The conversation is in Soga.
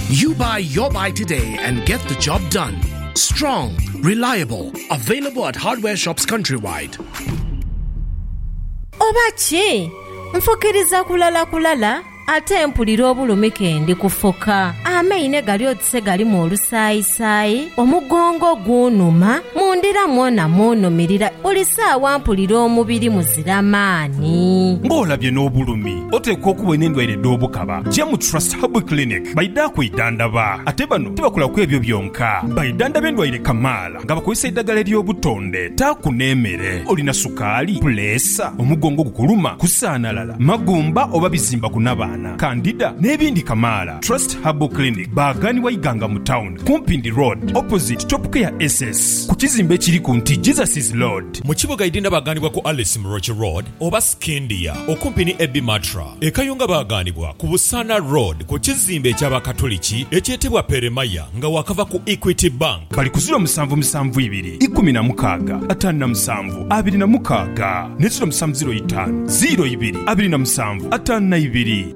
You buy your buy today and get the job done. Strong, reliable, available at hardware shops countrywide. Oba ki? Nfukiriza kulala kulala ate mpulira obulumi ke ndi kufuka. Amaine gali oti se galimu olusaayisaayi, omugongo gunhuma, mu ndira mwona munhumirira, buli saawa mpulira omubiri muzira maani. Ng'olabye n'obulumi. Oteekwa okuba olina endwaire edh'obukaba, ja mu Trust Herbal Clinic baidha kwidhandaba. Ate bano tibakola ku ebyo byonka, baidhandaba endwaire kamaala nga bakozesa eidhagala ery'obutonde. Taaku n'emere. Olina sukaali, puleesa, omugongo ogukuluma, kusaanalala, magumba oba bizimba ku nabaana, kandida n'ebindi kamaala. Trust Herbal Clinic baaghanibwa Iganga mu tawuni ku Mpindi Road opposite Topcare SS ku kizimbe ekiri ku nti Jesus is Lord. Mu kibuga Idinda baaghanibwa ku Alice Muroki Road oba. Scindia, okumpi ni Ebi Matra e Kayunga baaghanibwa ku Busaana Road ku kizimbe eky'Abakatuliki ekyetebwa Peremaya nga waakava ku Equity Bank. Bali ku ziro musanvu musanvu ibiri ikumi na mukaaga ataanu na musanvu abiri na mukaaga ne ziro musanvu ziro itaanu ziro ibiri abiri na musanvu ataanu na ibiri.